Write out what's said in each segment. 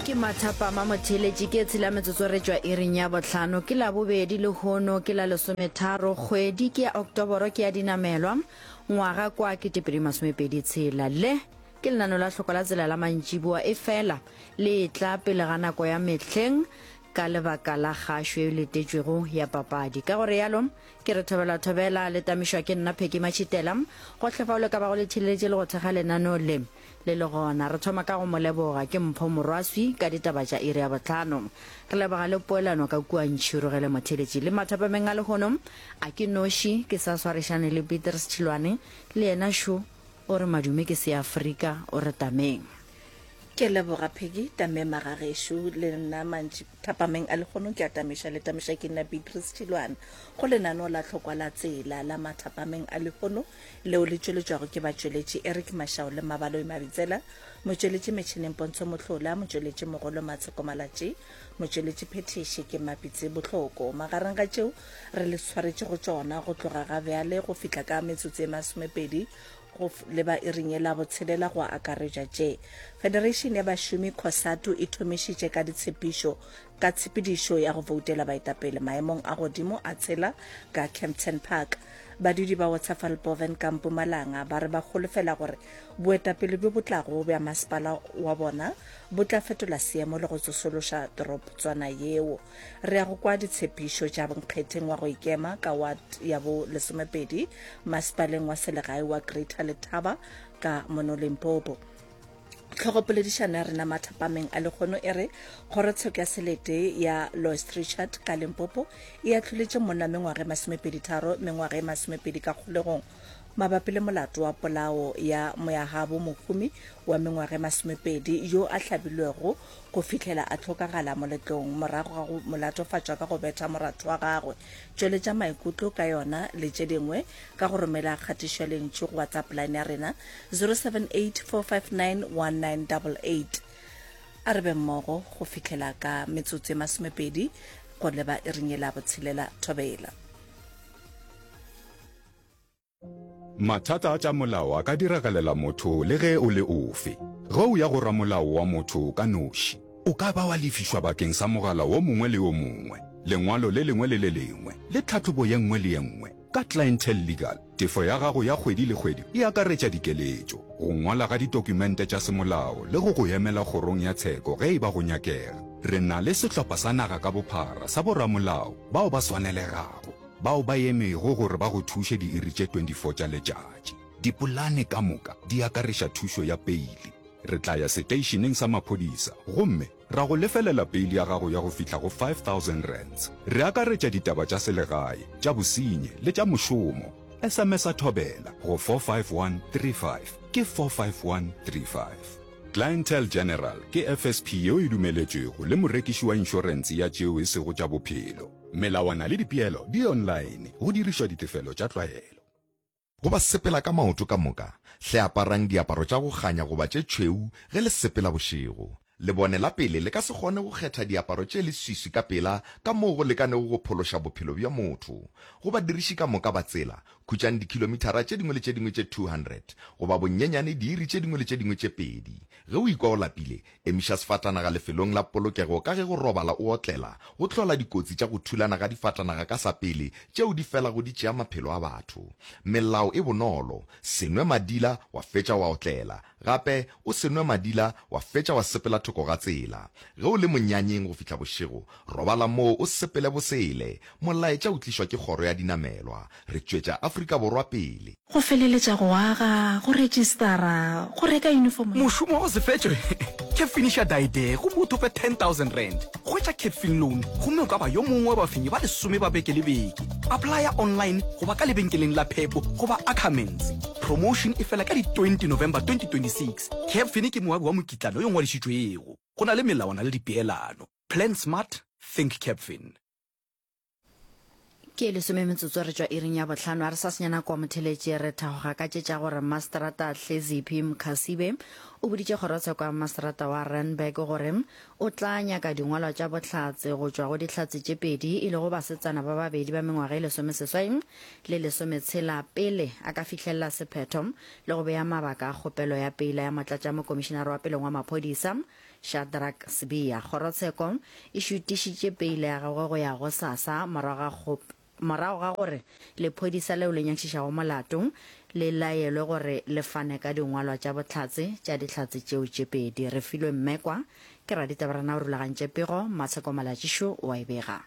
ke mathapama motheletši ke tshela metsotso re tšwa iring ya botlhano ke la bobedi le hono ke la lesometharo kgwedi ke ya oktoboro ke ya dinamelwa ngwaga kwa ke tepedi masomepedi tshela le ke lenano la hloko la tsela la mantšiboa e fela le tla pele ga nako ya mehleng ka lebaka la gašo e letetšwego ya papadi ka gore yalo ke re thobela thobela le tamišwa ke nna pheki matšhitela gohle fa o le ka bago le theleletše le go thekga lenano le Le le gona, re thoma ka go mo leboga ke mpho morwaswi ka ditaba tša iri ya bohlano. Re leboga le poelano ka kua Ntšhiru ge le mo theletše. Le mathapameng a lehono, a ke noši, ke sa swarišane le Peter Sethilwane, le yena šo o re madume ke Seafrika, o re tameng. Ke a leboga Peggy, tamema ga gešo, le nna mantši. Thapameng a lehono ke a tamiša le tamiša ke nna Beatrice Tšilwana go lenaneo la tlhokwa la tsela la mathapameng a lehono leo le tšweletšwago ke batšweletši Eric Mashao le Mabaloi Mabitsela motšweletši metšhineng Pontsho Mohlola motšweletši mogolo Matsheko Malatši motšweletši phethiši ke Mapitse Bohloko magareng ga tšeo re le tshwaretše go tšona go tloga ga bjale go fihla ka metsotso e masomepedi go le ba iring ye la botshelela go akaretša tše Federation ya Bašomi Cosatu e thomišitše ka ditshepišo ka tshepedišo ya go voutela baetapele maemong a godimo a tshela ka Kempton Park. Badudi ba Waterfallboven ka Mpumalanga ba re ba holofela gore boetapele bjo bo tlago bja masepala wa bona bo tla fetola seemo le go tsosološa toroptswana yeo. Re ya go kwa ditshepišo tša bonkgetheng wa go ikema ka ward ya bo lesomepedi masepaleng wa selegae wa Greater Letaba ka mono Limpopo. Tlhogopoledišano ya rena mathapameng a lekgono e re kgorotsheko ya selete ya Loist Richard ka Limpopo e atlholetše monna mengwaga e masomepedi tharo mengwaga e masomepedi ka kgolegong mabapi le molato wa polao ya moyagabo mohumi wa mengwaga e masomepedi yo a hlabilwego go fihlela a hlokagala moletlong morago ga go mo latofatša ka go betha moratho wa gagwe. Tšweletša maikutlo ka yona le tše dingwe ka go romela kgatišo ya lentšu go WhatsApp line ya rena 0784591988. A re be mmogo go fihlela ka metsotso e masomepedi go leba iring ye la botshelela thobela. Mathata a tša molao a ka diragalela motho le ge o le ofe. Ge o ya go ramolao wa motho ka noši, o ka ba wa lefišwa bakeng sa mogala wo mongwe le wo mongwe, lengwalo le lengwe le le lengwe, le tlhahlobo ye nngwe le ye nngwe. Ka Clientele Legal, tefo ya gago ya kgwedi le kgwedi e akaretša dikeletšo, go ngwala ga ditokumente tša semolao le go go emela kgorong ya tsheko ge e ba go nyakega. Re na le sehlopha sa naga ka bophara sa boramolao bao ba swanelegago. Bao ba emego gore ba go thuše diiri tše 24 tša letšatši. Dipolane ka moka di akareša thušo ya peili. Re tla ya seteišeneng sa maphodisa gomme ra go lefelela peili ya gago ya go fihla go R5,000. Re akaretša ditaba tša selegae, tša bosenyi le tša mošomo. SMS-a Thobela go 45135. Ke 45135. Clientele General ke FSP yeo e dumeletšwego le morekiši wa inšorense ya tšeo e sego tša bophelo. Melawana le dipeelo di online go dirišwa ditefelo tša tlwaelo. Go ba sepela ka maoto ka moka, hle aparang diaparo tša go kganya goba tše tšhweu ge le sepela bošego. Lebone la pele le ka se kgone go kgetha diaparo tše leswiswi ka pela ka moo go lekanego go phološa bophelo bja motho. Go badiriši ka moka ba tsela, khutšang dikhilomithara tše dingwe le tše dingwe tše 200, goba bonnyenyane diiri tše dingwe le tše dingwe tše pedi. Ge o ikwa o lapile, Emiša sefatanaga lefelong la polokego ka ge go robala o otlela go hlola dikotsi tša go thulana ga difatanaga ka sapele tšeo di felago di tšea maphelo a batho. Melao e bonolo, Se nwe madila wa fetša wa otlela. Gape, o se nwe madila wa fetša wa sepela thoko ga tsela. Ge o le monyanyeng go fihla bošego, robala moo o sepele bosele. Molaetša o tlišwa ke kgoro ya dinamelwa. Re tšwetša Afrika Borwa pele. Go feleletša go aga, go register-a, go reka uniform ya. Mošomo o se fetšwe? Ke finiša Daiday gomme o thope R10,000. Hwetša Capfin Loan gomme o ka ba yo mongwe wa bafenyi ba lesome ba beke le beke. Applya online goba ka lebenkeleng la Pep goba Ackermans. Promotion e fela ka di 20 November 2026. Capfin ke moabi wa mokitlana yo ngwadišitšwego. Go na le melawana le dipeelano. Plan smart, think Capfin. ke lesome metsotso re tšwa iring ya botlhano a re sa senyana kwa motheletše re thagoga ka tše tša gore masterata tleziphi mkhasibe o boditše kgorotsheko ya masterata wa renberg gore o tla nyaka dingwalwa tša bohlatse go tšwa go dihlatse tše pedi e lego basetsana ba babedi ba mengwaga e lesomeseswai le lesometshela pele a ka fihlelela sephetho le go beya mabaka a kgopelo ya pela ya motlatša mokomišenare wa peleng wa maphodisa Shadrack Sibiya, Kgorotsheko e šutišitše peile ya gagwe go ya go sasa morago ga morago ga gore lephodisa leo le nyakišišago molato le laelwe gore le fane ka dingwalwa tša bohlatse tša dihlatse tšeo tše pedi. Re filwe mmekwa ke raditabarena o rulagantše pego, Matsheko Malatšišu o a e bega.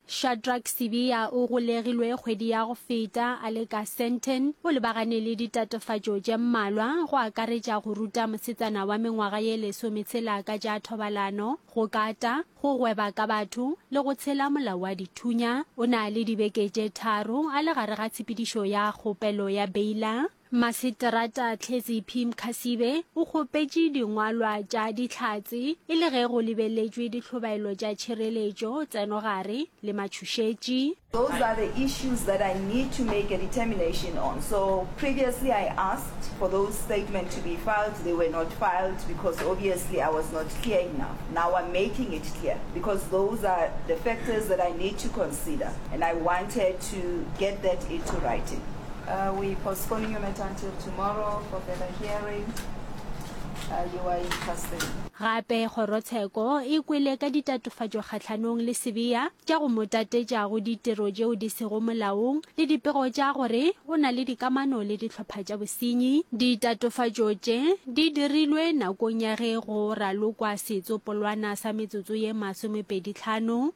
Shadrack Sibiya o golegilwe kgwedi ya go feta a le ka Sandton. O lebagane le ditatofatšo tše mmalwa, go akaretša go ruta mosetsana wa mengwaga ye lesometshela ka tša thobalano, go kata, go gweba ka batho le go tshela molao wa dithunya. O na le dibeke tše tharo a le gare ga tshepedišo ya kgopelo ya beila. Maseterata Tlhetsi P. Mkhasibe o kgopetše dingwalwa tša Dihlatse e le ge go lebeletšwe ditlhobaelo tša tšhireletšo, tsenogare le matšhošetši. Those are the issues that I need to make a determination on. So previously I asked for those statement to be filed, they were not filed because obviously I was not clear enough. Now I'm making it clear because those are the factors that I need to consider and I wanted to get that into writing. Gape kgorotsheko e kwele ka ditatofatšo kgahlanong le Sibiya tša go mo tatetša go ditiro tšeo di sego molaong le dipego tša gore o na le dikamano le dihlopha tša bosenyi. Ditatofatšo tše di dirilwe nakong ya ge go ralokwa setsopolwana sa metsotso ye masomepedi tlhano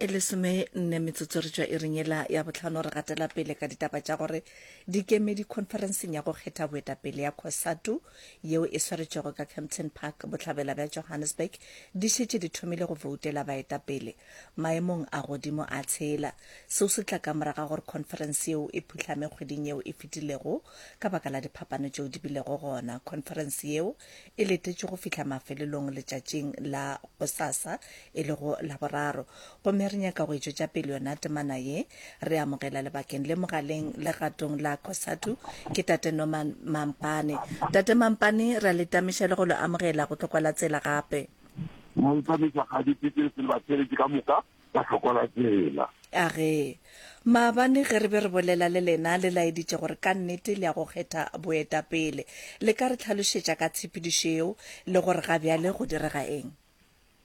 e le some nne metsotso re tswa e renyela ya botlhano re gatela pele ka ditaba tša gore dikemedi conferenceng ya go kgetha boetapele ya cosatu yeo e swaretšwego ka campton park bohlabela bja johannesburg di šetše di thomile go voutela baetapele maemong a godimo a tshela seo se tla ka moraga gore conference yeo e phuhlame kgweding yeo e fetilego ka baka la diphapano tšeo di bilego gona conference yeo e letetšwe go fihla mafelelong letšatšing la gosasa e lego laboraro gomme re nyaka go etšwetša pele yona temana ye re amogela lebakeng le mogaleng le gatong la cosatu ke tate norman mampane tate mampane re a letamiša le go lo amogela go tlokwa la tsela gape mampane ka ga dipitse se le ba tsheletše ka moka ba hlokola tsela. A re, Maabane ge re be re bolela le lena le laeditše gore ka nnete le ya go kgetha boetapele, le ka re tlhalošetša ka tshepedišo yeo le gore ga bjale go direga eng?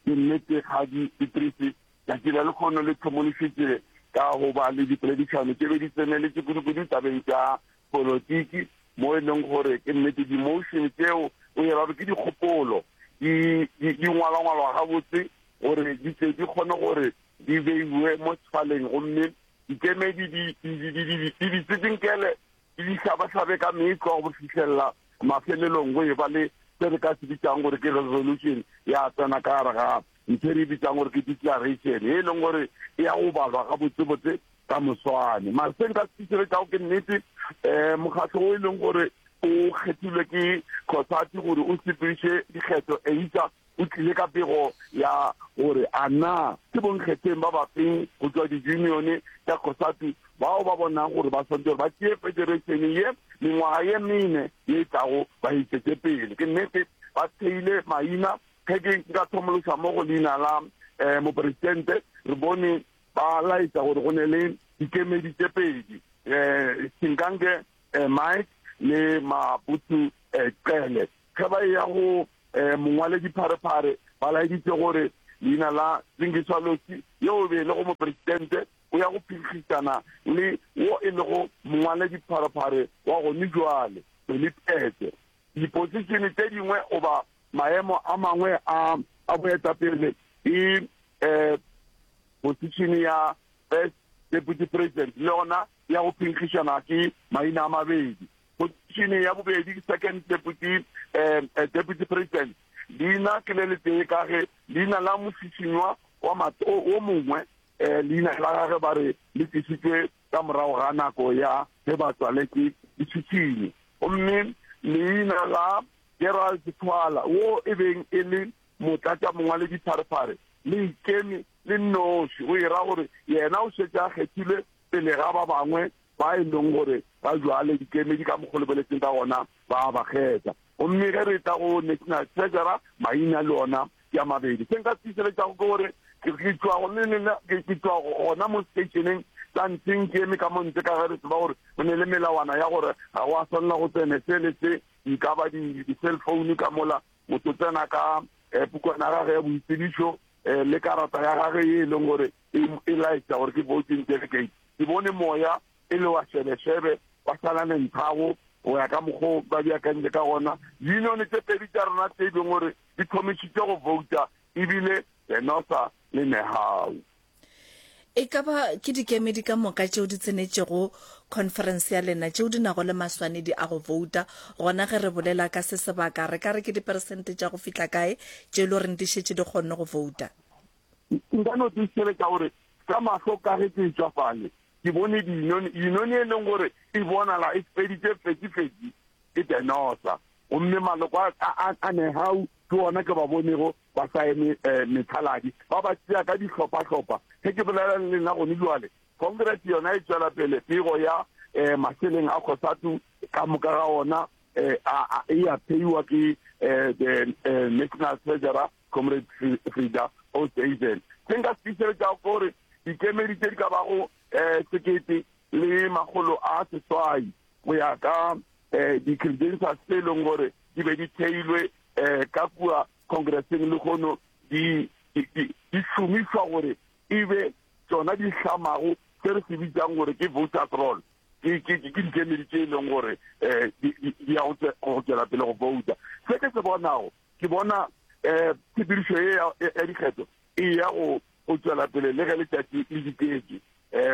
Ke nnete, Kgadi Idrisi, tšatši la lekgono le tlhomolišitše ka go ba le dipoledišano tše be di tseneletše kudukudu tabeng tša Polotiki, mo e leng gore ke nnete di-motion tseo o ira gore ke dikgopolo di di- di ngwalangwalwa gabotse gore di tle di kgone gore di beiwe mo sefaleng gomme dikemedi di di- di- di- di- di di tsitinkele di di hlabahlabe ka metlwa go fitlhelela mafelelong go e ba le se re ka se bitsang gore ke resolution ya tsena ka gare ga ntho e re e bitsang gore ke declaration e leng gore e ya go balwa gabotsebotse ka moswane. Mara se nka se fišere kao ke nnete um mokgatlho o e leng gore o kgethilwe ke cosati gore o sepediše dikgetho eitsa o tlile ka pego ya gore a na ke bonkgetheng ba bafeng go tswa di-unione tša cosati bao ba bonang gore ba swantse gore ba tšee federation ye mengwaga ye mene ye e tlago ba itsetse pele ke nnete ba theile maina ge ke nka thomološa mo go leina la um moporesidente re bone Ba laetša gore go ne le dikemedi tše pedi, Singange Mike le Mabutu Cele. Ge ba eya go mongwaledi Pharephare, ba laeditše gore leina la Lingiswa Losi, yo o be e lego mopresidente, o ya go phinkgišana le wo e lego mongwaledi Pharephare wa gonibjwale, Dolly Pete. Dipositšene tše dingwe goba maemo a mangwe a a boetapele ke um positšene ya First Deputy President, le yona ya go phenkgišana ke maina a mabedi. Positšene ya bobedi ke Second Deputy um Deputy President. Leina ke le letee ka ge leina la mošišinywa wa mat o mongwe um leina la gage ba re le tlišitšwe ka morago ga nako ya ge ba tswaletswe ditšhitšhine, gomme leina la Gerald Thwala, wo e beng e le motlatšamongwaledipharephare, le ikeme le nnoši, go e ra gore yena o šetše a kgethilwe pele ga ba bangwe ba e leng gore ga bjale dikemedi ka mokgwa o lebeletsweng ka gona Ba a ba kgetha. Gomme ge re tla go National Treasurer, maina le ona ke a mabedi. Se nka se tiišeletšago ke gore ke tšwa go le lena, ke tšwa gona mo stationeng sa ntseng ke eme ka mo ntle, ka ge re tseba gore go ne le melawana ya gore ga go a swanela go tsene se le se, di ka ba di-cell phone ka mola, motho tsena ka pukwana ya gage ya boitsebišo le karata ya gage ye e leng gore e laetša gore ke voting delegate. Ke bone moya e le wa šebešebe, wa sala le nthago, go ya ka mokgwa o ba beakantše ka gona. Unione tše pedi tša rona tše e leng gore di thomišitše go vouta ebile Venosa le Nehau. E ka ba ke dikemedi ka moka tšeo di tsenetšego khonferense ya lena tšeo di nago le maswanedi a go vouta, gona ge re bolela ka se sebaka re ka re ke diperesente tša go fihla kae tše e le goreng di šetše di kgonne go vouta? Nka no tiišeletša gore ka mahlo ka ge ke etšwa fale, ke bone dinone dinone e leng gore e bonala e feditse fetsi-fetsi ke tenosa gomme maloko a negau ke ona ke ba bonego ba sa eme eh, methaladi ba ba tseya ka dihlopha-hlopha ge ke bolela le lena gone jale congress yona e tswela pele pego ya um maseleng a kgosatu ka moka ga ona um e a pheiwa ke um national treasurer Comrade Frida Oosthuizen. Se nka se fišeletšago ke gore dikemedi tše di ka bago um eh, sekete le makgolo a seswai go ya ka um di-credentials tse e leng gore di be di theilwe um ka kua congresseng le kgono di šomišwa gore e be tsona di hlamago se re se bitsang gore ke voters roll ke dikemedi tse e leng gore um di ya go tswela pele go bouta se ke se bonago Ke bona tshepedišo ye ya dikgetho e ya go go tšwela pele le ge letšatši le diketše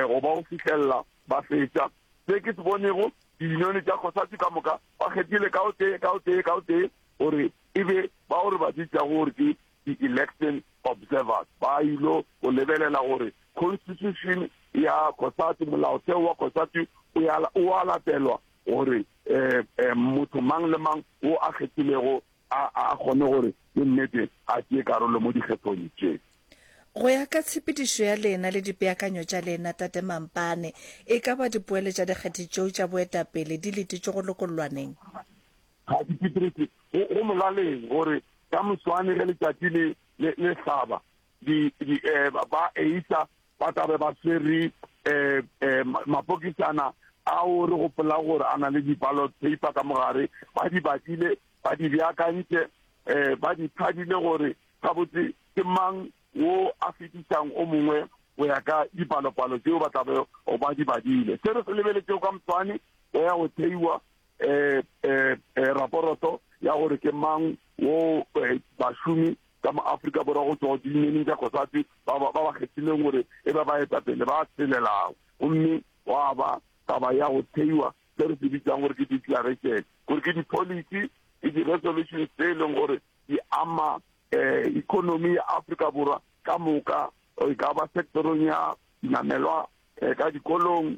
go ba go fihlelela ba fetša. Se ke se bonego, diyunione tša COSATU ka moka ba kgethile ka o tee ka o tee ka o tee gore e be ba gore ba bitšago gore ke di-election observers ba ilo go lebelela gore constitution ya COSATU, molaotheo wa COSATU o a latelwa gore um motho mang le mang o a kgethilego a a kgone gore ke nnete a tšee karolo mo dikgethong tše. Go ya ka tshepedišo ya lena le dipeakanyo tša lena, Tate Mampane, e ka ba dipoelo tša dikgethe tšeo tša boetapele di letetšwe go lokollwaneng? Kgathi Pitrese, Go molaleng gore ka moswane ge letšatši le le hlaba, di, di, eh, ba eisa ba tla be ba swere eh, eh, mapokisana ao re gopola gore a na le di-ballot paper ka mogare ba di badile ba di beakantše eh ba di phadile gore gabotse ke mang wo a fetisang o mongwe go ya ka dipalopalo tseo ba tlabe o ba di badile se re se lebeletseo ka moswane go ya go theiwa um um raporoto ya gore ke mang wo eh, bašomi ka mo Afrika Borwa go tšwa go diyunioneng tša Cosatu ba ba ba kgethileng gore e ba baetapele ba tshelelago gomme gwa ba taba ya go theiwa se re se bitsang gore ke declaration gore ke di-policy le di-resolutions tse e leng gore di ama um economy ya Afrika Borwa ka moka e ka ba sectorong ya dinamelwa um ka dikolong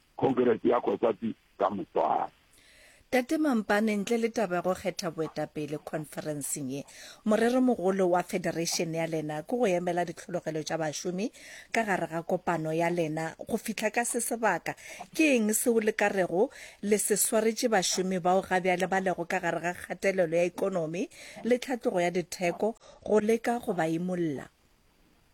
Khonkerese ya Kgotlatsi ka moswane. Tate Mampane, ntle le taba ya go kgetha boetapele khonferenseng ye, moreromogolo wa federation ya lena ke go emela ditlhologelo tša bašomi ka gare ga kopano ya lena go fihla ka se sebaka. Ke eng seo le ka rego le se swaretše bašomi bao ga bjale ba lego ka gare ga kgatelelo ya ekonomi le tlhatlogo ya ditheko go leka go ba imolla?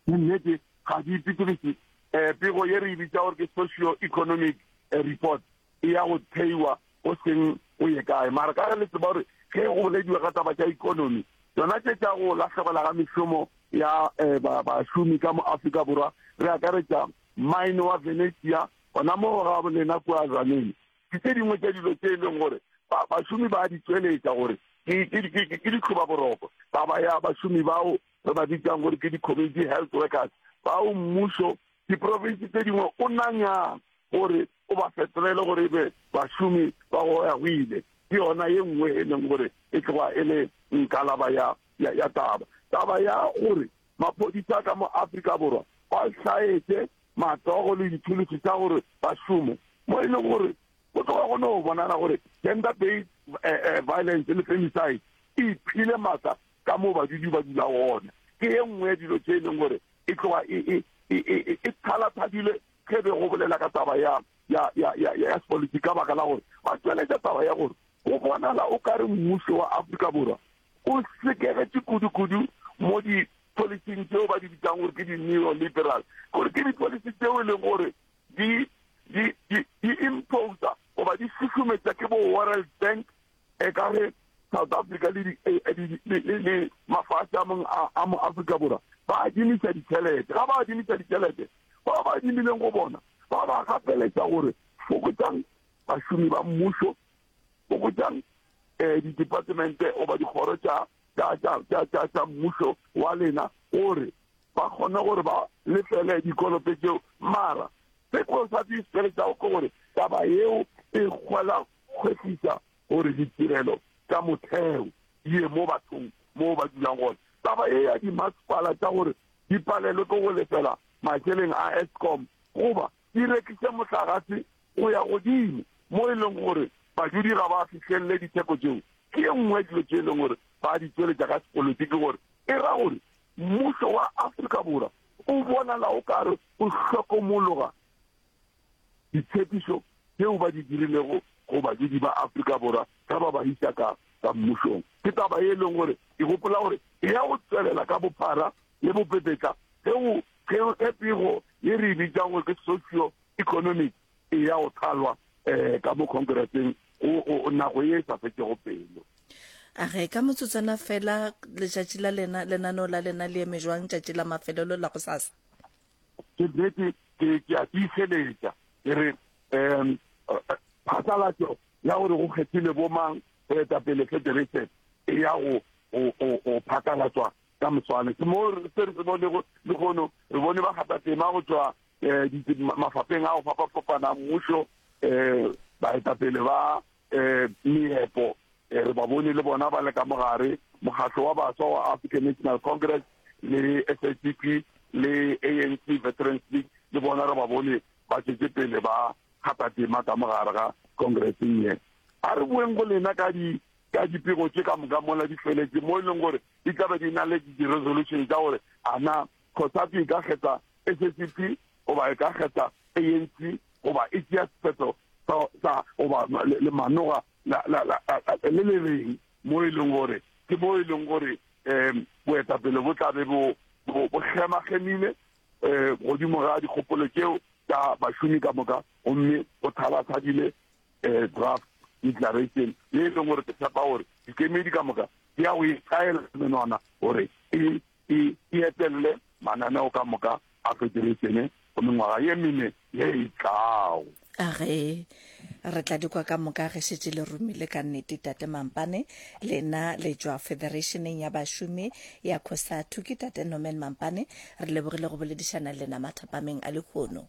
Ke nnete ga di ipitolise. Um pego ye re e bitsa gore ke socio-economic report e ya go theiwa go seng go ye kae mara ka ge le tseba gore ge go bolediwa ka taba tša economy tsona tše tša go lahlogela ga mešomo ya eh, bašomi ka mo afrika borwa re akaretša mine wa venetia gona mo ga bolena kua zaneng ke tse dingwe tša dilo tse e leng gore bašomi ba di tsweletša gore ke ditloba boroko taba ya bašomi bao re ba bitsang gore ke di-community health workers bao mmušo diprovinsi tse dingwe o nanyang gore o ba fetolele gore e be bašomi ba go ya go ile ke yona ye nngwe e leng gore e tloga e le nkalaba ya ya taba taba ya gore maphodisa ka mo afrika borwa ba hlaetse matsogo le dithulusi tsa gore ba šome mo e leng gore go tloga go ne go bonala gore gender based eh, eh, violence le femicide e iphile maatla ka moo badudi ba dula gona ke ye nngwe ya dilo tse e leng gore e tloga e, e, e, e, e, e thalathadile ge be go bolela ka taba ya ya ya ya ya sepolitiki ka baka la gore ba tsweletša taba ya gore go bonala o ka re mmuso wa afrika borwa o sekegetše kudu-kudu mo di-policing tseo ba di bitsang gore ke di-neo liberal gore ke di-policy tseo e leng gore di imposa goba di susumetsa ke bo world bank e ka re South Africa le di mafahla a mong a mo Africa Borwa ba adimisa ditšhelete ga ba adimisa ditšhelete ba ba adimileng go bona ba ba gapeletsa gore fokotsang bašomi ba mmušo fokotsang um didepartemente oba dikgoro tša mmušo wa lena gore ba kgone gore ba lefele dikoloto tseo mara se ko sa di tšhelete tsa go gore taba eo e kgwela Kwešiša gore ditirelo tša motheo di ye mo bathong moo ba dulang gona. Taba ye ya dimasepala tša gore di palelwe ke go lefela mašeleng a Eskom goba di rekiše mohlagase go ya godimo mo e leng gore badudi ga ba fihlelele ditheko tšeo ke ye nngwe ya dilo tše e leng gore ba di tšweletša ka sepolotiki gore e ra gore mmušo wa Afrika Borwa o bonala o ka re o hlokomologa ditshepišo tšeo ba di dirilego go badudi ba Afrika Borwa ge ba ba isa ka ka mmušong. Ke taba e leng gore ke gopola gore e ya go tswelela ka bophara le bopepetla ge go ge ge pego ye re e bitsang gore ke socio economic e ya go thalwa um ka mo khonkereseng nako ye e sa fetšego pelo a re ka motsotsana fela letšatši la lena lenaneo la lena le eme jwang tšatši la mafelelo la go sasa ke nnete ke ke a tiiseletša ke re um phasalatšo ya gore go kgethile bomang go eta pele federation e ya go go phasalatswa ka moswane ke moo se re se bone le gono re bone ba gata tema go tswa um mafapeng a go fapa-fapana mmušo um baetapele ba um meepo um re ba bone le bona ba le ka mogare mokgatlo wa baswa wa african national congress le s a c p le a n c veterans league le bona re ba bone ba tšwetse pele ba kgata tema ka mogare ga congresseng ye a re boeng go lena ka di ka dipego tše ka moka mola di feletse mo e leng gore di tlabe di na le di-resolution tsa gore ana Cosatu e ka kgetha SACP goba e ka kgetha ANC goba e tšea sephetho sa goba le manoga le le reng mo e leng gore ke mo e leng gore um boetapele bo tlabe bo bo kgemagemile um godimo ga dikgopolo tšeo tsa bašomi ka moka gomme go thalathadile um draft declaration le e leng gore ke tshepa gore dikemedi ka moka di ya go e tlaela menwana gore e e e etelele mananeo ka moka a federeitšene go mengwaga ye mene ye e tlago. Ge re tla dikwa ka moka ge šetše le romile ka nnete, Tate Mampane. Lena le tšwa Federeitšeneng ya Bašomi ya Cosatu. Ke Tate Norman Mampane. Re lebogile go boledišana le lena mathapameng a lehono.